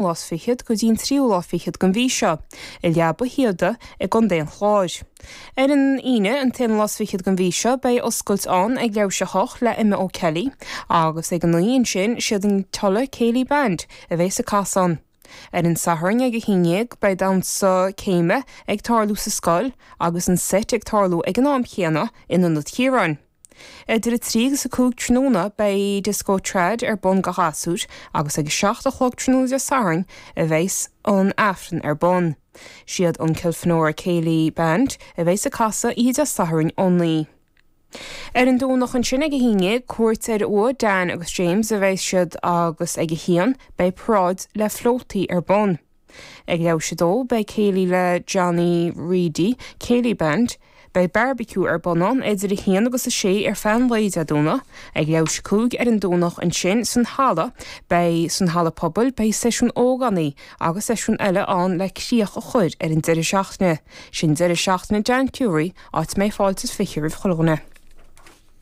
lá is fichead go dtí'n tríú lá fichead den mhí seo, i Leaba Shíoda i gContae an Chláir. Ar an Aoine, an t-aonú lá is fichead den mhí seo, beidh oscailt ann ag leathuair tar éis a hocht le Emma O'Kelly agus ag a naoi ansin, siad an Tulla Céilí Band a bheas ag casadh ann. Ar an Satharn ag a haon dhéag beidh damhsa céime ag tarlú sa scoil agus an seit ag tarlú ag an am chéanna in Ionad Chiaráin. Idir a trí agus a cúig tráthnóna beidh Disco Trad ar bun go ghasúir agus ag a seacht a chlog tráthnóna Dé Sathairn a bheas an Aifreann ar bun. Siad an Kilfenora Céilí Band a bheas ag casadh oíche Dé Sathairn ó naoi. Ar an Domhnach ansin ag a haon dhéag cuairt ar uaigh Dan agus James a bheas siad agus ag a haon beidh paráid le flótaí ar bun. Ag leathuair tar éis a 2, beidh céilí le Johnny Reidy Céilí Band. Beidh bearbaiciú ar bun ann idir 1 agus 6 ar feadh an lae Dé Domhnaigh. Ag leathuair tar éis a 5, ar an Domhnach ansin san halla, beidh san halla pobail, beidh seisiún ógánaigh agus seisiún eile ann le críoch a chur ar an deireadh seachtaine. Sin deireadh seachtaine Dan Furey, áit a mbeidh fáilte is fiche roimh chuile dhuine.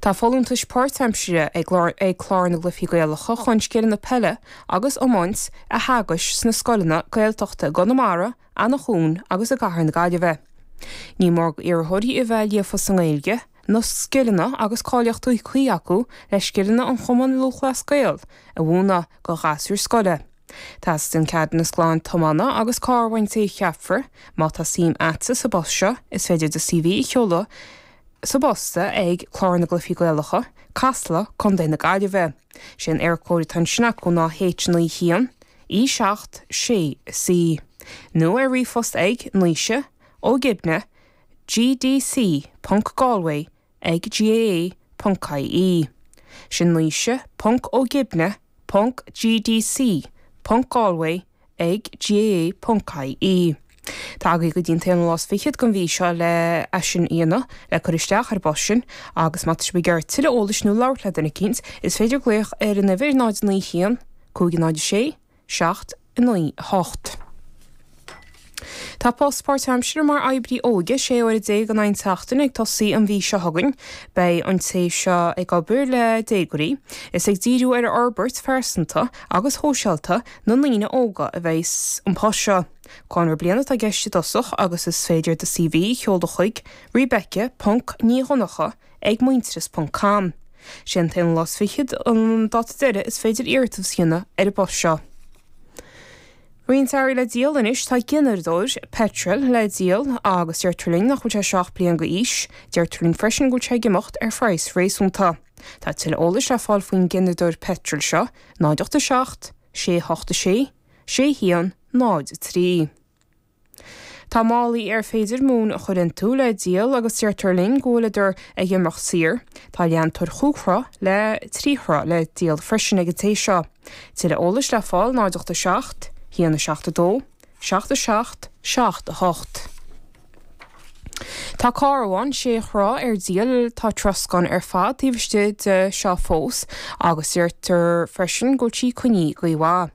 Tá folúntais páirtaimseartha ag Clár na gCluichí Gaelacha chun scileanna peile agus iomáint a theagasc sna scoileanna Gaeltachta i gConamara, Eanach Dhúin agus i gCathair na Gaillimhe. Ní mór d'iarrthóirí a bheith líofa sa nGaeilge, na scileanna agus cáilíochtaí cuí acu le scileanna an Chumainn Lúthchleas Gael a mhúineadh go ghasúir scoile. Teastaíonn ceadúnas glan tiomána agus carr ón té a cheapfar. Má tá suim a'dsa sa bpost seo, is féidir do CV a sheoladh sa bpost ag, Clár na gCluifí Gaelacha, Casla, Contae na Gaillimhe. Sé an Eircode atá ansin acu ná H9 1 E 7 6 C. Nó ar ríomhphost ag, Naoise, Ó Gibne, gdc, ponc, galway, ag GAA.ie. Sin Naoise, Ponc Ó Gibne, Ponc GDC, Ponc Galway, ag GAA.ie. Tá agaí go dtí an t-aonú lá is fichead den mhí seo le é sin a dhéanamh, le cur isteach ar an bpost sin, agus má tá sibh ag iarraidh tuilleadh eolais nó labhairt le duine eicínt, is féidir glaoch ar an uimhir 09 1 596 7, 9, 8. Tá post páirtaimseartha mar oibrí óige 16 uaire in aghaidh an tseachtain ag tosaí an mhí seo chugainn. Beidh an té seo ag obair le déagóirí. Is ag díriú ar fhorbairt phearsanta agus shóisialta na ndaoine óga a bheidh an post seo. Conradh bliana atá i gceist i dtosach agus is féidir do CV a sheoladh chuig, Rebecca, Ponc, Ní Dhonnacha, ag Muintearas ponc com. Sé an t-aon lá is fichead an dáta deireadh is féidir iarratas a dhéanamh ar an bpost seo. Roinnt earraí le díol anois, tá gineardóir peitril le díol agus deirtear linn nach bhfuil sé seo ach bliain d'aois. Deirtear linn freisin go bhfuil sé ag imeacht ar phraghas réasúnta. Tá tuilleadh eolais le fáil faoin gineardóir peitril seo, 0 8 7 6 8 6 6 1 0 3. Tá málaí ar féidir móin a chur iontu le díol agus deirtear linn go bhfuileadar ag imeacht saor. Tá leantóir chúig throigh le trí throigh le díol freisin ag an té seo. Tuilleadh eolais le fáil 0 8 7, 1, 7, 2, 7, 7, 7, 8. Tá carbhán sé throigh ar díol, tá troscán ar fad taobh istigh de seo fós agus deirtear freisin go bhfuil sí coinnithe i gcaoi mhaith.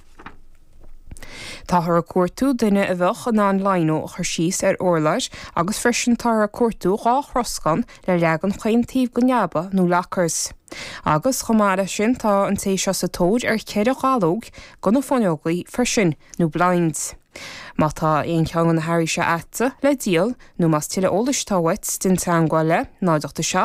Táthar ag cuartú duine a bheadh in ann lino a chur síos ar urláir agus freisin táthar ag cuartú dhá throscán le leagan chaon taobh den leaba nó lockers. Agus chomh maith leis sin tá an té seo sa tóir ar cheithre dhallóg do na fuinneogaí freisin nó blinds. Má tá aon cheann de na hearraí seo agatsa le díol nó más tuilleadh eolais atá uait déan teangmháil le, 0 8 7.